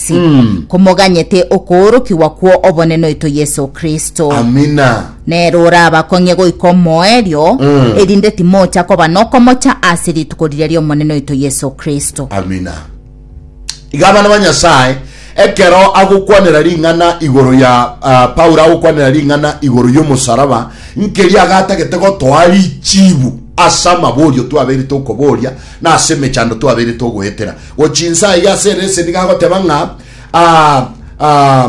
Mm. komoganyete okoorokigwa kwo obonene oito Yeso Kristo. Amina. Nero orabakong'ie goika omoerio, Mm. erinde timocha koba nokomocha ase rituko riria ri'Omonene oito Yeso Kristo. Amina. Iga abana ba Nyasaye, ekero agokwanera ring'ana igoro ya ah, Paulo agokwanera ring'ana igoro y'omosaraba, nkeria agatagete gotoa richibu ase amaborio twabeire tokoboria na ase emechando twabeire togoetera. Gochia inse aiga ase ereseni gagoteba ng'a ah, ah,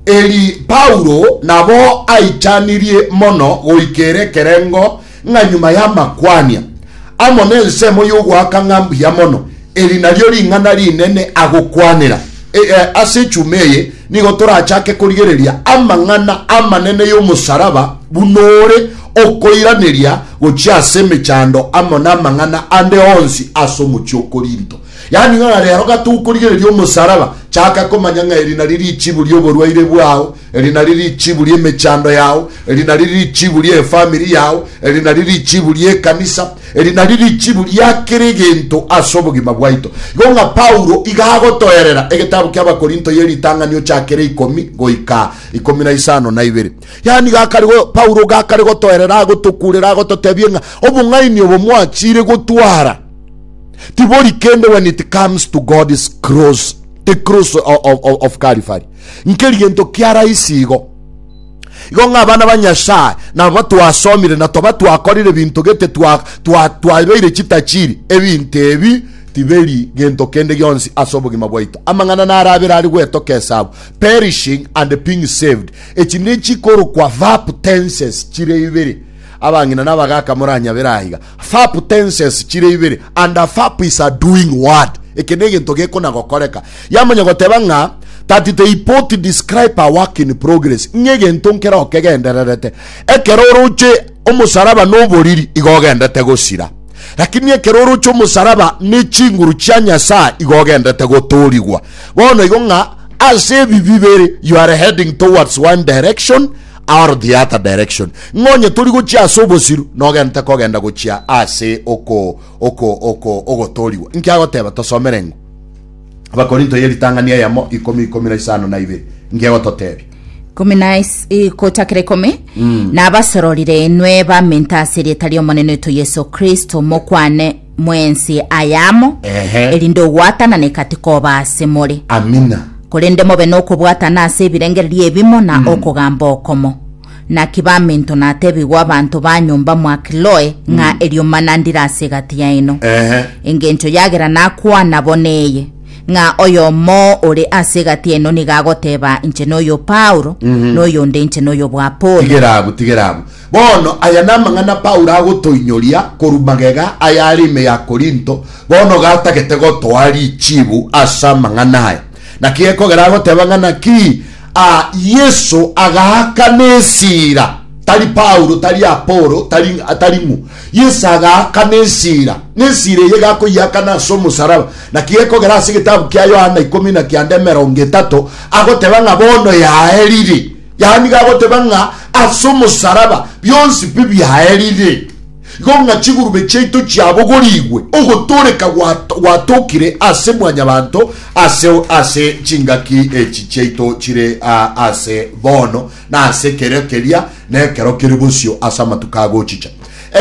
eri Paulo nabo aichanirie mono goika ere ekerengo ng'a nyuma y'amakwania amo nensemo y'ogoaka ng'a mbuya mono, eri nario ring'ana rinene agokwanera. E, e, ase echuma eye nigo torachake korigereria amang'ana amanene y'omosaraba buna ore okoiraneria gochia ase emechando amo namang'ana ande onsi ase omochie o Korinto. Yaani ng'a rero gatogokorigereria omosaraba, chaka komanya ng'a eri nari richibu ri'oborwaire bwao, eri nari richibu ri'emechando yao, eri nari richibu ri'efamiri yao, eri nari richibu ri'ekanisa, Eri nario richibu ria kera egento ase obogima bwaito. Igo ng'a Paulo iga agotoerera egetabu ki'Abakorinto ye ritang'anio chia kera ikomi goika ikomi na isano na ibere. Yaani gakare Paulo gakare gotoerera agotokurera agototebia ng'a obong'aini obo mwachire gotwara tibori kende when it comes to God's cross, the cross of Calvary. Nkeri gento kia rahisi igo. Igo ng'a abana ba Nyasae nabo twasomire na toba twakorire binto gete twabeire chitachiri, ebinto ebi tiberi gento kende gionsi ase obogima bwaito. Amang'ana narabere ari gwetoka esabu, perishing and being saved. Echi nechikorokwa verb tenses chire ibere. Abang'ina na abagaaka moranyabere aiga. Verb tenses chire ibere and a verb is a doing word. Eke ne egento gekona gokoreka. Yamanya goteba ng'a that the report describe a work in progress ng'a egento nkere okegendererete. Ekero oroche omosaraba na oboriri igo ogendete gosira. Lakini ekero oroche omosaraba ne chinguru chia Nyasaye igo ogendete gotoorigwa. Bono igo ng'a ase ebi bibere you are heading towards one direction Our theatre direction. Ng'a onye tori gochia ase obosiru, nogente kogenda gochia ase oko oko oko ogotoorigwa. Inki agoteba? Tosomere eng'u. Abakorinto ye ritang'ani eyemo ikomi ikomi na isano na ibere. Inki egototebia? Ikomi na is- eh, gochakera ikomi nabasororire inwe bamenta ase erieta ri'Omonene oito Yeso Kristo, mokwane mwensi ayamo, Ehe. erinde ogwatanana egati koba ase more, Amina. korende mobe nokobwatana ase ebirengererio ebimo na okogamba okomo. Naki baminto natebigwe abanto ba nyomba mwa Kloe ng'a eriomba nandire ase egati yaino. Ehe. Engencho yagera nakwana bo neye, ng'a oyomo ore ase egati yaino nigo agoteba inche noyo Paulo, noyonde inche noyo bw'Apolo. Tigera abwo, tigera abwo. Bono aya namang'ana Paulo agotoinyoria korwa magega ayare ime ya Korinto, bono gatagete gotoa richibu ase amang'ana aya. Naki gekogera agoteba ng'a naki aa Yeso agaakana esira, tari Paulo, tari Apolo, tari tari ng'u. Yeso agaakana esira, na esira eye gakoyeakana ase omosaraba. Naki gekogera ase egetabu kia Yohana ikomi na kianda emerongo etato, agoteba ng'a bono yaerire. Yaani gagoteba ng'a ase omosaraba bionsi pi biaerire, igo ng'a chigurube chiaito chiabogorigwe, ogotooreka gwatokire ase Mwanyabaanto aseo ase chingaki echi chiaito chire aase bono na ase ekero keria na ekero kere bosio ase amatuko agochicha.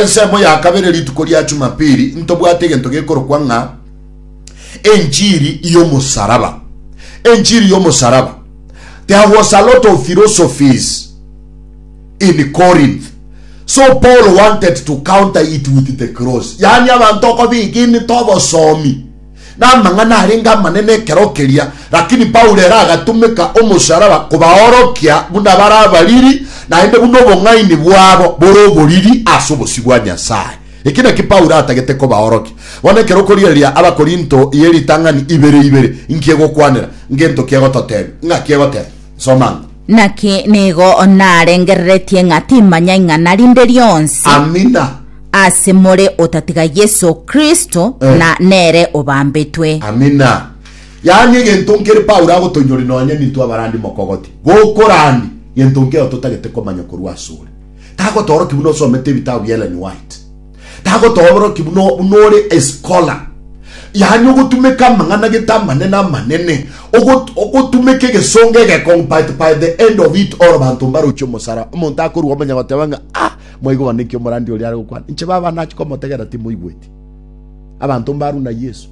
Ensemo ya kabere rituko ria Jumapili ntobwate egento gekorokwa ng'a enchiri y'omosaraba. Enchiri y'omosaraba. There was a lot of philosophies in Corinth. So Paul wanted to counter it with the cross. Yani abantu okobigini tobosomi na amang'ana arenge amanene ekero keria, lakini Paulo era agatumeka omosaraba kobaorokia buna bare abariri, naende buna obong'aini bwabo bore oboriri ase obosio bwa Nyasae. Eki naki Paulo atagete kobaorokia. Bono ekero okorigereria Abakorinto ye ritang'ani ibere ibere, inki egokwanera? Ngento ki egototebia? Ng'aki egoteba? Soma ang'o. Naki nigo narengereretie ng'a timanya ing'ana rinde rionsi Amina. ase more otatiga Yeso Kristo, Eh. na nere obambetwe. Amina. Yaani egento nkere Paulo agotoinyori nonye nintwe abarandi mokogoti, gokorandi gento nkere totagete komanya korwa asore. Tagotooroki buna osomete ebitabu bia Ellen White. Tagotooroki buna buna ore escholar. Yaani ogotumeka amang'ana gete amanene amanene, ogot- ogotumeka egesongo egekong'u, but by the end of it all banto mbarochie omosara. Omonto akorwa omanya goteba ng'a ah, mwaigwa bono naki omorandi oria are gokwana. Inche baba nachi komotegera timoigweti. Abanto mbarwa na Yeso.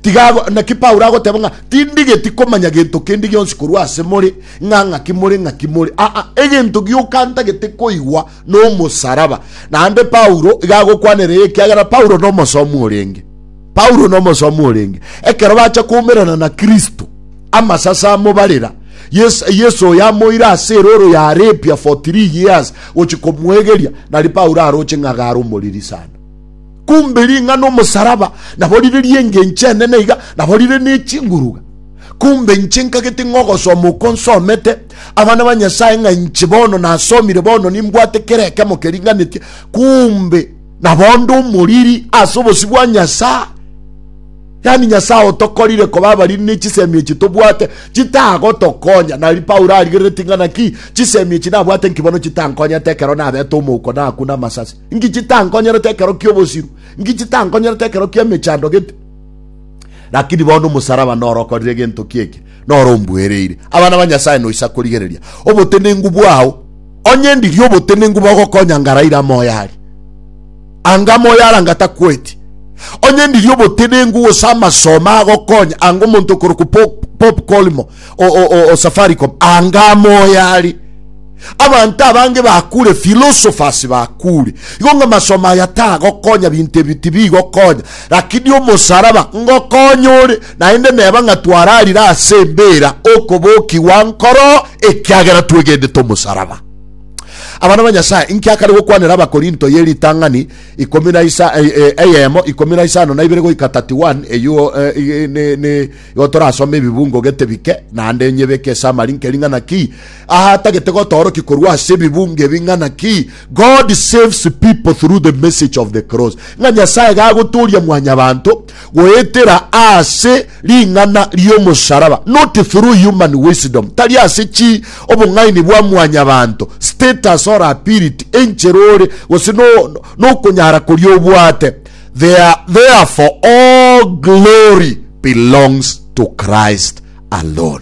Tiga ago- naki Paulo agoteba ng'a tindigeti komanya gento kende gionsi korwa ase more, ng'a ng'aki more, ng'aki more. Aa, egento gioka ntagete koigwa nomosaraba. Naende Paulo iga agokwanera eye ekiagera Paulo nomosomu orenge. Paulo nomosomu orenge. Ekero bacha koumerana na Kristo, amasase amobarera, Yesu, Yesu oyo amoire ase eroro ya Arabia for three years gochia komoegeria, nari Paulo aroche ng'a garomoriri sana. Kumbe ring'ana omosaraba nabo rire ri'engencho enene iga, nabo rire n'echinguruga. Kumbe inche nkagete ng'a ogosoma okwo nsomete abana ba Nyasae ng'a inche bono nasomire bono nimbwate kera ekemo keringanetie, kumbe nabo onde omoriri ase obosio bwa Nyasae. Yaani Nyasae otokorire koba abariri ne chisemi echi tobwate chitagotokonya. Nari Paulo arigereretie ng'a naki chisemi echi nabwate nki bono chitankonyete ekero nabete omouko na aku na amasasi. Inki chitankonyerete ekero ki'obosiru? Inki chitankonyerete ekero ki'emechando gete? Lakini bono omosaraba noro okorire gento ki'eke, noro ombuereire. Abana ba Nyasae noisa korigereria obotenenku bwao, onye ndirie obotenenku bogokonya ngaraire amoyo aria, anga amoyo aria anga takueti. Onye ndirie obotenenku gose amasomo agokonya anga omonto okorokwa Pope Pope Colimo o Safaricom anga amoya ari abanto abange bakure philosophers bakure igo ng'a masomo aya tagokonya binto ebi tibigokonya lakini omosaraba ngokonya ore naende neba ng'a twararire ase embera okobokigwa nkoro ekiagera twegendete omosaraba abana ba nyasaye nkiakare gokwanera abakorinto ye ritang'ani ikomi na isa eyemo eh, eh, ikomi na isano na ibere goika 31 eyuo eh, Igo torasome ebibungo gete bike, naende onye beke ase amarinka ering'ana ki aha tagete gotoorokia korwa ase ebibungo ebi ng'ana ki God saves people through the message of the cross, ng'a Nyasae gagotooria mwanyabanto goetera ase ring'ana ri'omosaraba, not through human wisdom, tari ase chi obong'aini bwa mwanyabanto, status or ability, enchera ore, gose no, nokonyara koria obwate. There, therefore all glory belongs to Christ alone.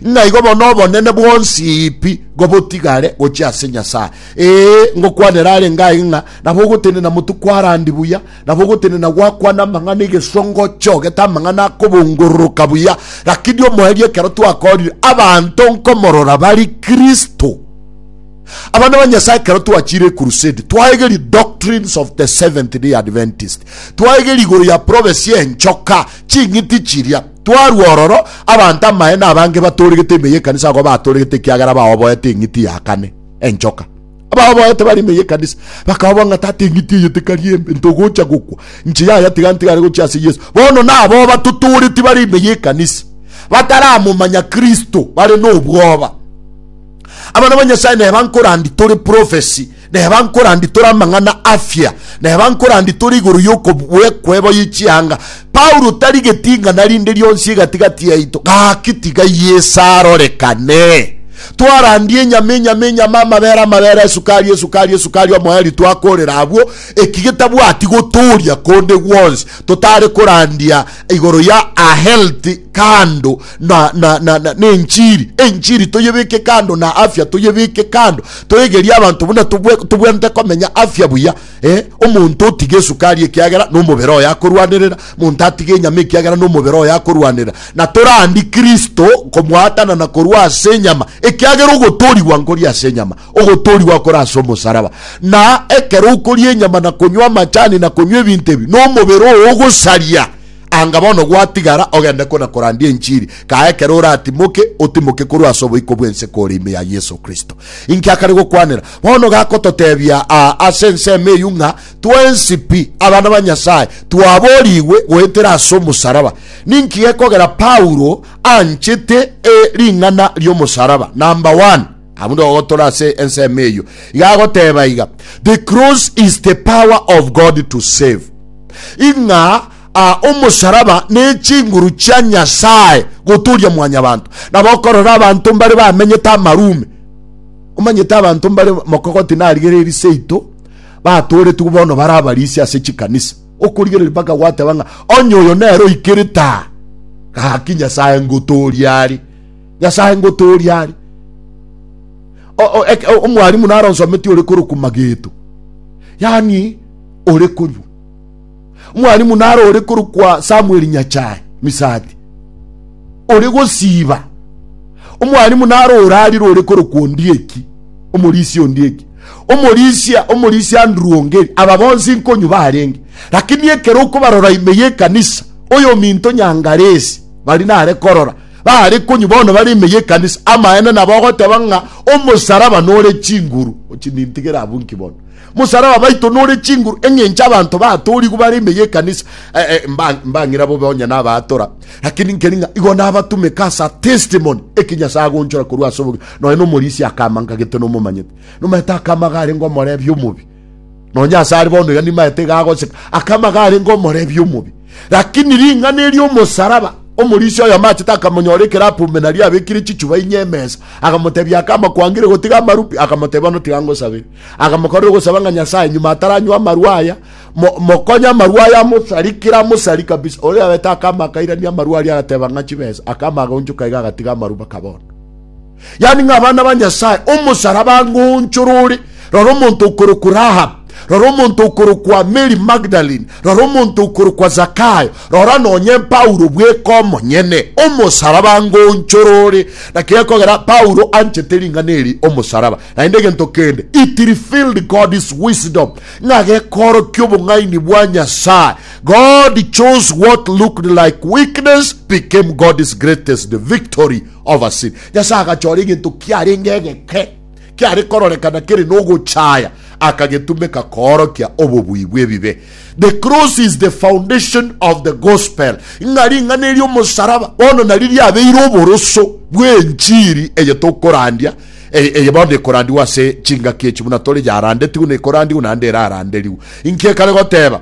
Ng'a igo bono obonene bwonsi pi gobotigare gochia ase Nyasae. Ee, ngokwanera arenge aye ng'a nabo ogotenena motu kwarandi buya, nabo ogotenena gwakwana amang'ana egesongo ochogete amang'ana akobongororoka buya, lakini omoerio ekero twakoorire abanto nkomorora bari Kristo. Abana ba Nyasae, ekero twachire ecrusade, twaegeria doctrines of the Seventh Day Adventist, twaegeria igoro ya prophecy enchoka, ching'iti chiria. Twarua ororo, abanto amaye na abange batooregete ime y'ekanisa agwo batooregete ekiagera baoboete eng'iti ya kane, enchoka. Abaoboete bare ime y'ekanisa bakaoboa ng'a tata eng'iti eye tekari embe, ntogocha gokwa, inche yaya tiga ntigare gochia ase Yeso. Bono naboo batotooreti bare ime y'ekanisa bataramomanya Kristo, bare nobwoba. Abana ba Nyasae neba nkorandi tore prophecy, neba nkorandi tore amang'ana afia, neba nkorandi tore igoro y'okobuekwebo ye chianga. Paulo tari geting'ana rinde rionsi egati-gati yaito, gaki tiga Yeso arorekane. Twarandie enyama, enyama, enyama, amabere, amabere, esukari, esukari, esukari, omoeri twakorera abwo, eki getabwati gotoria konde gwonsi, totare korandia igoro ya a healthy candle, na, na, na, na, na enchiri enchiri toyebeke kando na afya toyebeke kando toegerie abanto buna tobwe- tobwanete komenya afya buya eh? omonto otiga esukari ekiagera nomobere oyo akorwanerera monto atiga enyama ekiagera nomobere oyo akorwanerera na torandi kristo komwatana na korwa ase enyama ekiagera ogotorigwa nkori ase enyama ogotorigwa kore ase omosaraba na ekero okoria enyama na konywa amachani na konywa ebinto ebi nomobere oo ogosaria Anga bono gwatigara ogende kona korandia enchiri, kaa ekero oratimoke, otimoke korwa ase oboiko bw'ense kore ime ya Yeso Kristo. Inki akare gokwanera? Bono gakototebia aa ase ensemo eyio ng'a twensi pi, abana ba Nyasae, twaboorigwe goetera ase omosaraba. Ninki gekogera Paulo anchete ring'ana ri'omosaraba? Number one. Abwo nigo gotora ase ensemo eyio. Iga agoteba iga, The cross is the power of God to save. Ing'a a omosaraba ne chinguru chia Nyasae goturia mwanyabanto. Nabo okorora abanto mbare bamenyete amarume. Omanyete abanto mbare mokogoti narigereiri seito batoretigwe bono bare abarisi ase chikanisa. Okorigereria mpaka gwateba ng'a onye oyo nero oikerete aa gaki Nyasae ngotoria are. nyasae ngotoria are omwarimu naronsometi ore koroku mageto yani ore konywa omwarimu naro ore korokwa samuel nyachae misati ore gosiba omwarimu naro orarire ore korokwa ondieki omorisia ondieki omorisia omorisia andrew ongeri aba bonsi nkonywa barenge lakini ekero okobarora ime yekanisa oyo minto nyangaresi bari nare korora Baare konywa bono bare ime y'ekanisa. Amaene nabo ogoteba ng'a omosaraba nore chinguru. Ochi nintigere abwo nki bono? Mosaraba baito nore chinguru eng'encho abanto batorigwe bare ime y'ekanisa. Eh, eh, mba- mbang'ira bobe onye nabaatora. Lakini nkeri ng'a igo nabatumeka asa testimony eki Nyasae agonchora korwa ase obogima. Nonya nomorisia akama nkagete nomomanyete. Nomanyete akama iga arenge omorebi omobi. nonye ase are bono iga nimaete iga agoseka akama garenge omorebi omobi lakini ring'ana eri omosaraba omorisia oyo amachete akamonyora ekerapu omenari abekire chichuba inye emesa akamotebia akama kwangire gotiga amarupi akamotebia bono tiga ngosabere akamokorera ogosaba ng'a nyasaye nyuma ataranywa amarwa aya mo- mokonye amarwa aya amosarikire amosari kabisa oria abete akama akairania amarwa aria agateba ng'a chibesa akama agaonchoka iga agatiga amaruba kabondo yaani ng'a abana ba Nyasaye, omosaraba ngoonchora ore, rora omonto okorokwa Rahab, rora omonto okorokwa Mary Magdalene, rora omonto okorokwa Zakayo, rora nonye Paulo bweka omonyene, omosaraba ngoonchora ore. Naki gekogera Paulo anchete ring'ana eri omosaraba, naende egento kende, it revealed God's wisdom, ng'a gekoorokia obong'aini bwa Nyasae. God chose what looked like weakness became God's greatest victory. Overseen. Nyasae agachora egento kiarenge egeke, kiare kororekana kere nogochaya, akagetumeka koorokia obobui bw'ebibe. The cross is the foundation of the gospel, ng'a ring'ana eria omosaraba bono nario riabeire oboroso bw'enchiri eye tokorandia, e, eye bono ekorandigwa ase chingaki echi buna tore yarandetigwe na ekorandigwe naende eraranderigwe. Inki ekare goteba?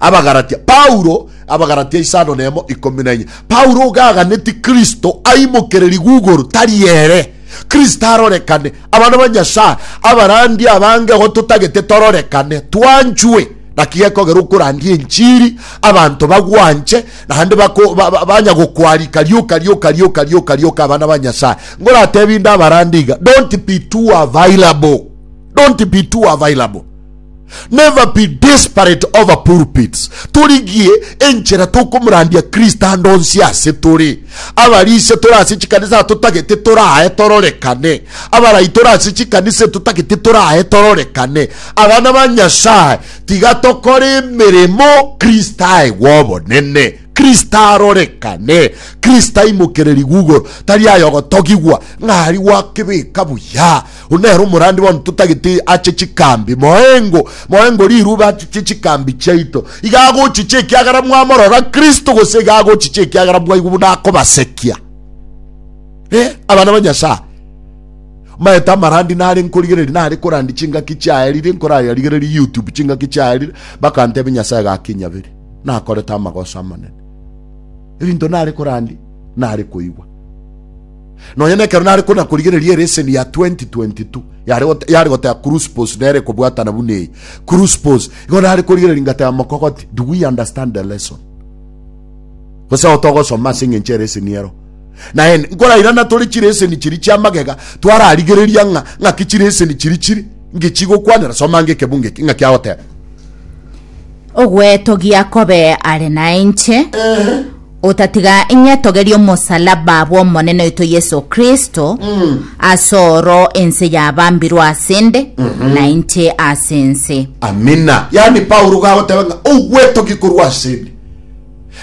Abagalatia. Paulo Abagalatia isano nemo ikomi na inye. Paulo oga aganetie Kristo aimokere riguguru tari ere. Kristo arorekane. Abana ba Nyasaye abarandi abange igo totagete tororekane, twanchwe. Naki gekogera okorandia enchiri abanto bagwanche naende bako- ba- ba- banya gokwarika rioka rioka rioka rioka rioka abana ba Nyasaye. Ngoratebi inde abarandi iga, don't be too available. Don't be too available. Never be desperate over pulpits. Torigie enchera tokomorandia Kristo ande onsi ase tore. Abaria ise tore ase chikanisa atotagete torae tororekane. Abarai tore ase chikanisa etotagete torae tororekane. Abana ba Nyasae, tiga tokore emeremo Kristo aegwe obonene. Kristo arorekane. Kristo aimokererigwe igoro. Tari ayogotogigwa ng'a ari gwakebeka buya. Oyio nere omorandi bono totagete ache chikambi, moengo, moengo riruba achiche chikambi chiaito. Iga agochicha ekiagera mwamorora Kristo, gose iga agochicha ekiagera mwaigwa buna akobasekia? Eh, abana ba Nyasae, maete amarandi nare nkorigereria nare korandi chingaki chiaerire nkorariarigererie youtube chingaki chiaerire bakantebe nyasae gakinyabere nakorete amagoso amanene ebinto nare korandi nare koigwa Nonya nekero nare konakorigereria ereseni ya 2022 yare gote- yare goteba Cruspos nere kobwatana buna eye. Cruspos igo nare korigereria ngateba mokogoti, do we understand the lesson? gose aho togosoma ase eng'encho ereseni ero naende nkorairana tore chireseni chiri chia magega twararigereria ng'a ng'aki chireseni chiri chiri ngechi gokwanera soma nge ekebu ngeki ng'aki agoteba Ogwetogia kobe are nainche, Otatiga ing'etogerie omosalaba bw'Omonene oito Yeso Kristo, ase oro ense yabambirwe ase 'nde, na inche ase ense. Amina. Yaani Paulo iga agoteba ng'a ogwetogia korwa ase 'nde.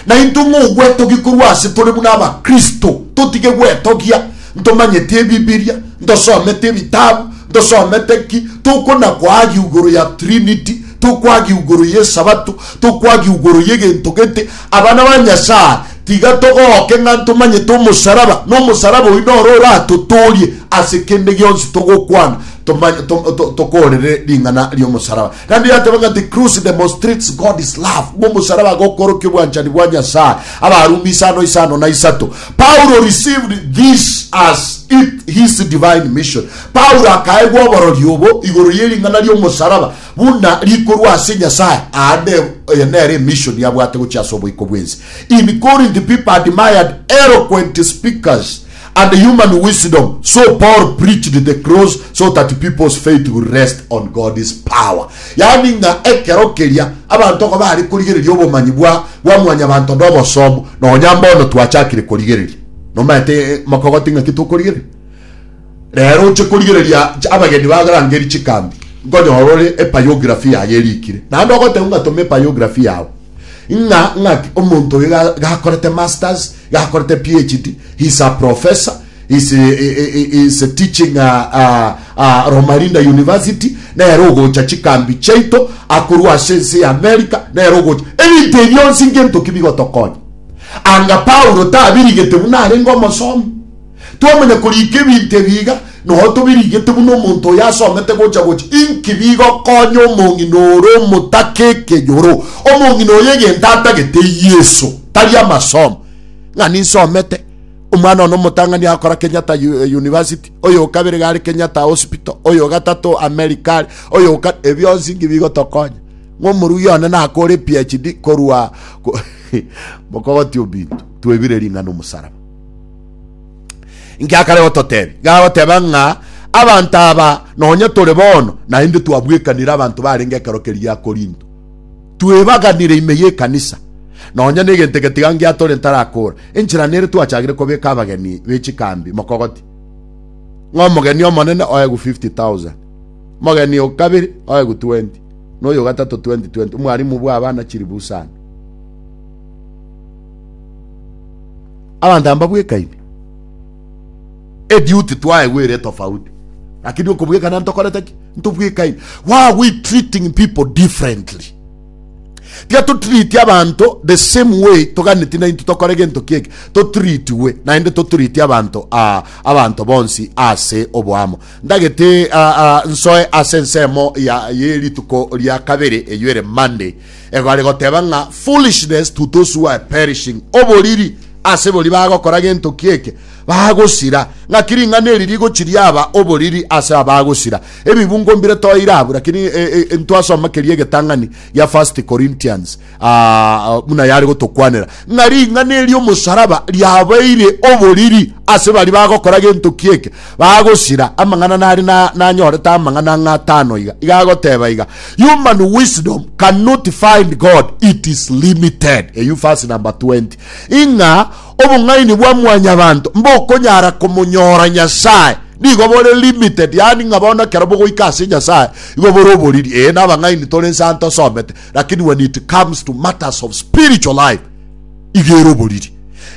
Na intwe ng'a ogwetogia korwa ase tore buna Abakristo, totige gwetogia ntomanyeti Ebibiria, ntosometi ebitabu, ntosomete ki, tokonakoagia igoro ya Trinity, tokoagia igoro y'Esabato, tokoagia igoro y'egento gete, Abana ba Nyasae, tiga togooke ng'a ntomanyete omosaraba, na omosaraba oyio noro oratotoorie ase kende gionsi togokwana tomanya, to, to, tokoorere ring'ana ri'omosaraba. Naende yateba ng'a the cross demonstrates God's love, ng'a omosaraba gokorokia obwanchani bwa Nyasae. Abarumi isano isano na isato. Paulo received this as it his divine mission. Paulo akaegwa oborori obo igoro y'ering'ana ri'omosaraba, Buna rikorwa ase Nyasae, aande eye nere emission yabwate gochia ase oboiko bw'ense. In Corinth people admired eloquent speakers and human wisdom, so Paul preached the cross so that people's faith will rest on God's power. Yaani ng'a ekero keria abanto nigo bare korigereria obomanyi bwa bwa mwanyabanto na obosomu, nonya mbono twachakire korigereria. Nomaete eh, mokogoti ng'aki tokorigereria? Reero oche korigereria abageni bagarangerie chikambi, nkonyora ore ebiography yaye erikire, naende ogotebiwa ng'a toma ebiography yao ng'a ng'aki omonto oyo ga- gakorete masters, gakorete PhD, he is a professor, he is, he- he- he- he is teaching a, a, a Romalinda University, nere ogocha chikambi chiaito, akorwa ase ense ya America, nere ogocha. Ebinto ebi bionsi ngento ki bigotokonya? Anga Paulo tabirigete buna arenge omosomi. Twamanya koriika ebinto ebi iga, noyo tobiriigete buna omonto oyo asomete gocha gocha, inki bigokonya omong'ina ore omotake ekeyoro? Omong'ina oyo egento atagete Yeso, tari amasomo. Ng'a ninsomete, omwana one omotang'ani agakora Kenyatta University, oyo okabere iga are Kenyatta Hospital, oyo ogatato America are, oyo oka... Ebionsi inki bigotokonya? Ng'a omorugi one nakore PhD korwa... Mokogotia obinto, twebire ring'ana omosaraba. Ngiakare gototebia, gagoteba ng'a abanto aba nonye tore bono naende twabwekanire abanto barenge ekero keria gia Korinto. Twebaganire ime y'ekanisa, nonye negento egetiga ngiatore ntarakora. Enchera nere twachagire kobeka abageni be chikambi mokogoti, ng'a omogeni omonene oegwe 50,000, mogeni o kabere oegwe 20, na oyogatato 20, 20. Omwarimu bw'abana chilifu isano. abanto aba mbabwekaine eduty twaegwere tofauti lakini okobwekana ntokorete ki ntobwekaine why are we treating people differently tiga totreat abanto the same way toganeti nainto tokore gento kieke totreatwe naende totreat abanto ah, abanto bonsi ase oboamo ndagete ah, ah, nsoe ase ensemo ya yerituko ria kabere eyo ere monday Egari goteba ng'a foolishness to those who are perishing, oboriri ase boria bagokora gento ki'eke, bagosira, ng'aki ring'ana eri rigochi riaba oboriri ase abagosira. Ebibungo mbire toeire abwo, lakini e, e, e, ntwasoma keria egetang'ani gia First Corinthians ah, buna yare gotokwanera ng'a ring'ana eri omosaraba riabaire oboriri ase bari bagokora gento ki'eke, bagosira amang'ana nari na- nanyorete amang'ana ng'a atano iga, iga agoteba iga, Human wisdom cannot find God, it is limited. Eyu verse number 20. Ing'a obong'aini bwa mwanyabanto mbokonyara komonyora Nyasae nigo bore limited, yani ng'a bono ekero bogoika ase Nyasae igo bore oboriri. Ee, nabang'aini tore inse aa ntosomete, lakini when it comes to matters of spiritual life, igere oboriri.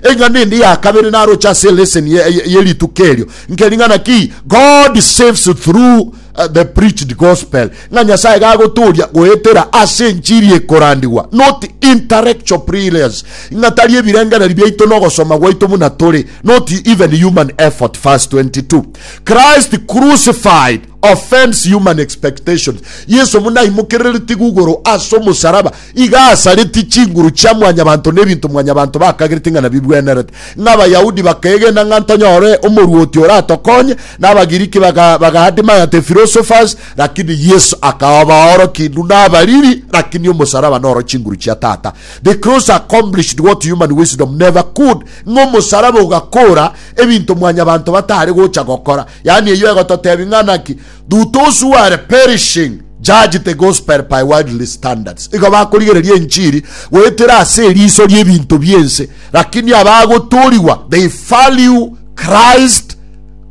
Eng'ana ende ya kabere naroche ase lesson ye, ye, ye rituko erio nkeri ng'ana ki God saves through uh, the preached gospel ng'a Nyasaye gagotoria goetera ase enchiri ekorandigwa not intellectual prayers ng'a tari ebirengereri biaito nogosoma gwaito buna tore not even human effort verse 22 Christ crucified offends human expectations Yesu buna aimokerereti gugoro ase omosaraba Iga asaretie chinguru chia mwanyabanto na ebinto mwanyabanto bakagerete ng'a nabigwenerete, ng'a Abayahudi bakaegena ng'a ntonyore omorwoti oratokonye, na Abagiriki baga, baga admire the philosophers, lakini Yesu akaba obaoroki indu na abariri, lakini omosaraba noro chinguru chia Tata. The cross accomplished what human wisdom never could, ng'a omosaraba ogakora ebinto mwanyabanto batare gocha gokora. Yaani eyio egototebi ng'a naki Do those who are perishing judge the gospel by worldly standards igo bakorigereria enchiri goetera ase eriso ri'ebinto bi'ense lakini abagotoorigwa they value christ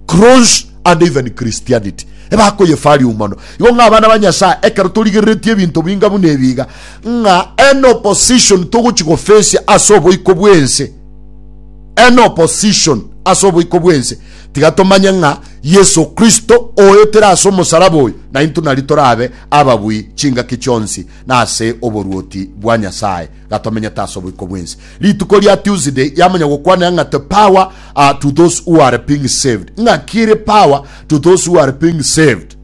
cross and even christianity ebakoyefariu mono igo ng'a abana ba nyasaye ekero torigereretie ebinto binga buna ebiga ng'a an opposition togochi gofesia ase oboiko bw'ense an opposition ase oboiko bw'ense Tiga tomanye ng'a Yeso Kristo oetire ase omosalaba oyo, naintwe nari torabe ababui chingaki chionsi na ase oboruoti bwa Nyasae gatomenyete ase oboiko bw'ense. Rituko ria Tuesday yamanya gokwanera ng'a the power to those who are being saved. Ng'aki ere power to those who are being saved?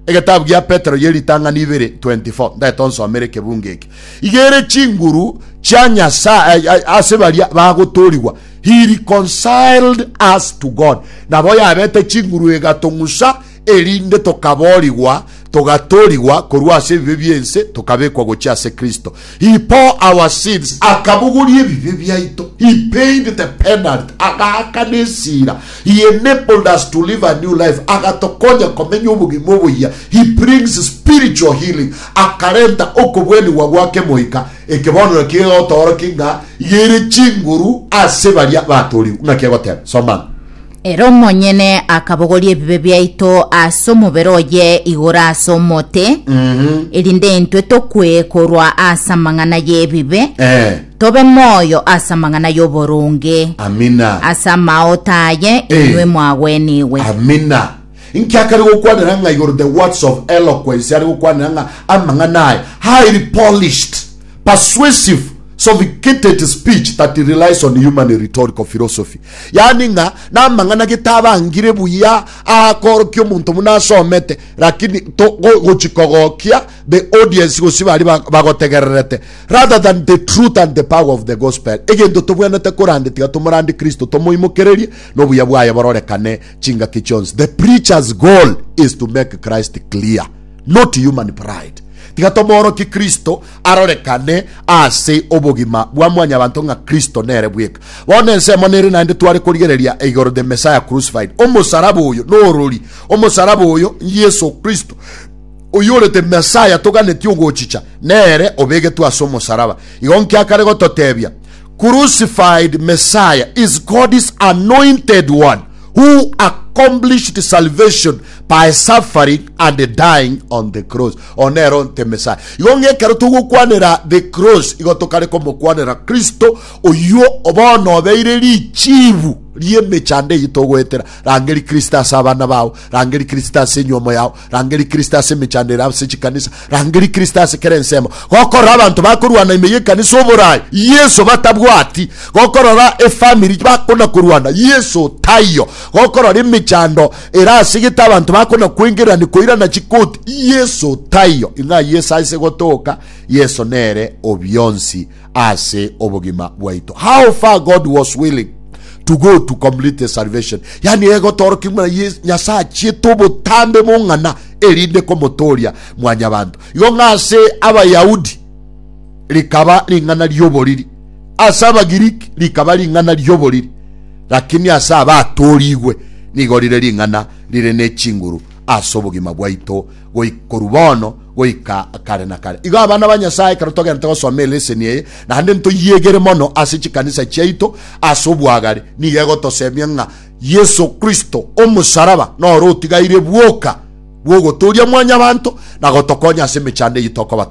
Egetabu gia Petero ye ritang'ani ibere 24 ndaete onsomere ekebungo eke. Igere chinguru chia Nyasae eh, eh, ase baria bagotoorigwa he reconciled us to God. Nabo yabete chinguru egatong'usa erinde tokaboorigwa togatoorigwa korwa ase ebibe bi'ense tokabekwa gochia ase Kristo. He bore our sins, akabogoria ebibe biaito, He paid the penalty, agaakana esira, He enabled us to live a new life, agatokonya komenya obogima oboyia, He brings spiritual healing, akarenta okobwenigwa gw'akemoika, ekebonero ekia egotoorokia ng'a iga ere chinguru ase baria baatoorigwe. Ng'aki egoteba? Somana. Ere omonyene akabogoria ebibe biaito ase omobere oye igoro ase omote, erinde intwe tokwe korwa ase amang'ana y'ebibe, Eh, tobe moyo ase amang'ana y'oboronge. amina. Ase amaote aye Eh. inwe mwagwenigwe. Amina. Inki akare gokwanera ng'a igoro the words of eloquence are gokwanera ng'a amang'ana aye highly polished, persuasive, sophicated speech that relies on human rhetorical philosophy. Yaani ng'a namang'ana getabangire buya aakorokia omonto buna asomete lakini to go- gochikogokia the audience gosi bari ba- bagotegererete rather than the truth and the power of the gospel. Egento tobwenete korande tiga tomorande Kristo tomoimokererie nobuya bwaye bororekane chingaki chionsi. The preacher's goal is to make Christ clear, not human pride. Tiga tomoorokie Kristo arorekane ase obogima bwa mwanyabanto ng'a Kristo nere bweka. Bono ensemo nere naende tware korigereria igoro the Messiah crucified. Omosaraba oyo norori. Omosaraba oyo Yesu Kristo oyore the Messiah toganetie ogochicha, nere obegetwe ase omosaraba. Igo nkiakare gototebia, Crucified Messiah is God's anointed one who accomplished salvation by suffering and dying on the cross. One ero nte Messiah. Igo ng'a ekero togokwanera the cross, igo tokare komokwanera Kristo oyio bono obeire richiibu ri'emechando eyio togoetera. Rangeria Kristo ase abana bao, rangeria Kristo ase enyomo yao, Rangeria Kristo ase emechando ere ase chikanisa. Rangeria Kristo ase kera ensemo. Gokorora abanto bakorwana ime y'ekanisa oborai, Yeso batabwati. Gokorora efamiri bakona korwana, Yeso taiyo. Gokorora emechando ere ase gete abanto bakona kwengererani koirana chikoti, Yeso taiyo. Ing'a Yeso aise gotoka, Yeso nere obionsi. ase obogima bwaito. How far God was willing to go to complete the salvation. Yani egotoroki muna Nyasaye achiete obotambe bong'ana erinde komotoria mwanyabanto. Igo ng'ase Abayahudi rikaba ring'ana rioboriri. Ase Abagiriki rikaba ring'ana rioboriri. Lakini ase abatorigwe nigo rire ring'ana rire ne chinguru ase obogima bwaito goika korwa bono goika kare na kare. Igo abana ba Nyasae, ekero togenderete gosoma eleseni eye, naende ntoyiegere mono ase chikanisa chiaito ase obwagare, nigo egotosemia ng'a Yeso Kristo omosaraba noro otigaire bwoka bw'ogotooria mwanyabanto na gotokonya ase emechando eyio tokoba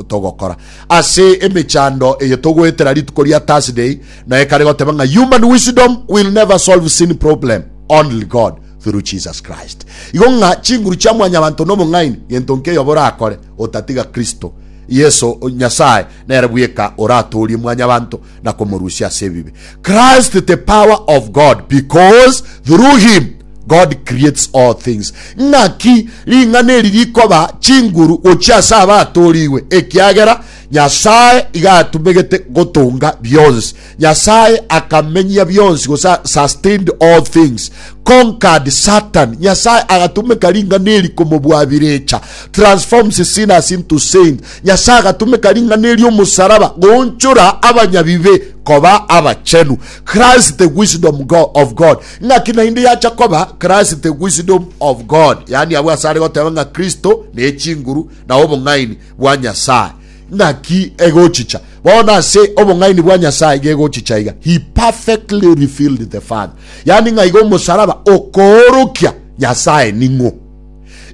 togokora. Ase emechando eye togoetera rituko ria Thursday, noe kare goteba ng'a human wisdom will never solve sin problem, only God. through Jesus Christ. Igo ng'a chinguru chia mwanyabanto nobong'aini, gento nki eyoba orakore otatiga Kristo Yeso Nyasae nere bweka oratoorie mwanyabanto na komorusia ase ebibe. Christ the power of God because through him God creates all things. Ng'aki ring'ana eri rikoba chinguru gochia ase abatoorigwe? Ekiagera Nyasae iga atumegete gotonga bionsi. Nyasae akamenyia bionsi, gose sustained all things, conquered Satan. Nyasae agatumeka ring'ana eri komobwabirecha, transforms sinners into saints. Nyasae agatumeka ring'ana eri omosaraba goonchora abanyabibe koba abachenu. Christ the wisdom of God. Ng'aki naende yacha koba Christ the wisdom of God, yaani abwo asare goteba ng'a Kristo nechinguru na obong'aini bwa Nyasae. Naki egochicha bono ase obong'aini bwa Nyasae gegochicha iga, He perfectly revealed the Father. Yaani ng'a igo omosaraba okoorokia Nyasae ning'o.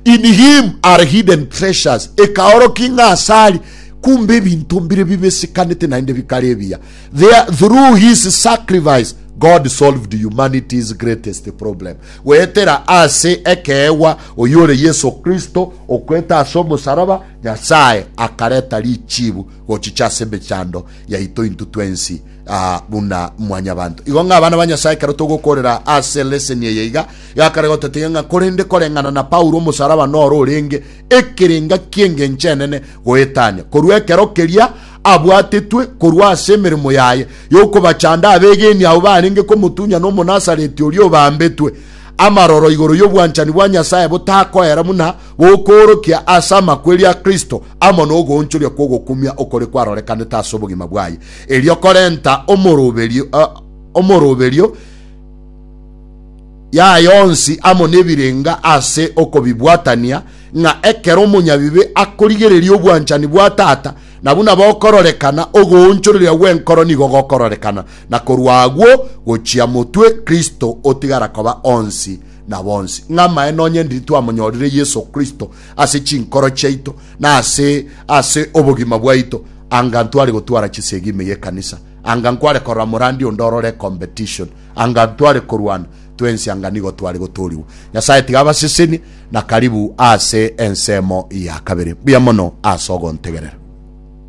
In him are hidden treasures, ekaorokia ng'a asari kumbe ebinto mbire bibisikanete naende bikare ebiya. There, through his sacrifice, God solved humanity's greatest problem. Goetera ase ekeegwa oyore Yeso Kristo okwete ase omosaraba Nyasae akareta richiibu gochicha ase emechando yaito intwe twensi aa buna mwanyabanto. Igo ng'a abana ba Nyasae ekero togokoorera ase leseni eye iga, gakare gototebia ng'a korende koreng'ana na Paulo omosalaba noro orenge ekerenga ki'engencho enene goetania, korwa ekero keria abwatetwe korwa ase emeremo yaye y'okobachanda abeegeni abwo barenge komotunyana Omonasareti oria obaambetwe. Amaroro igoro y'obwanchani bwa Nyasae botakoera buna gokoorokia ase amakweri a Kristo amo nogoonchoria kw'ogokumia okore kwarorekanete ase obogima bwaye, erio korenta omoroberio omoroberio yaye onsi amo nebirenga ase okobibwatania, ng'a ekero omonyabibe akorigereria obwanchani bwa Tata, na buna bokororekana, ogoonchoreria gw'enkoro nigo gokororekana, na korwa agwo gochia motwe, Kristo, otigara koba onsi na bonsi, ng'a amaene onye ndiri twamonyorire Yeso Kristo ase chinkoro chiaito na ase ase obogima bwaito, anga ntware gotwara chisegi ime y'ekanisa, anga nkware korora morandi onde orore competition, anga ntware korwana twensi, anga nigo tware gotoorigwa. Nyasae tiga abasesenie, na karibu ase ensemo ya kabere. Mbuya mono ase ogontegerera.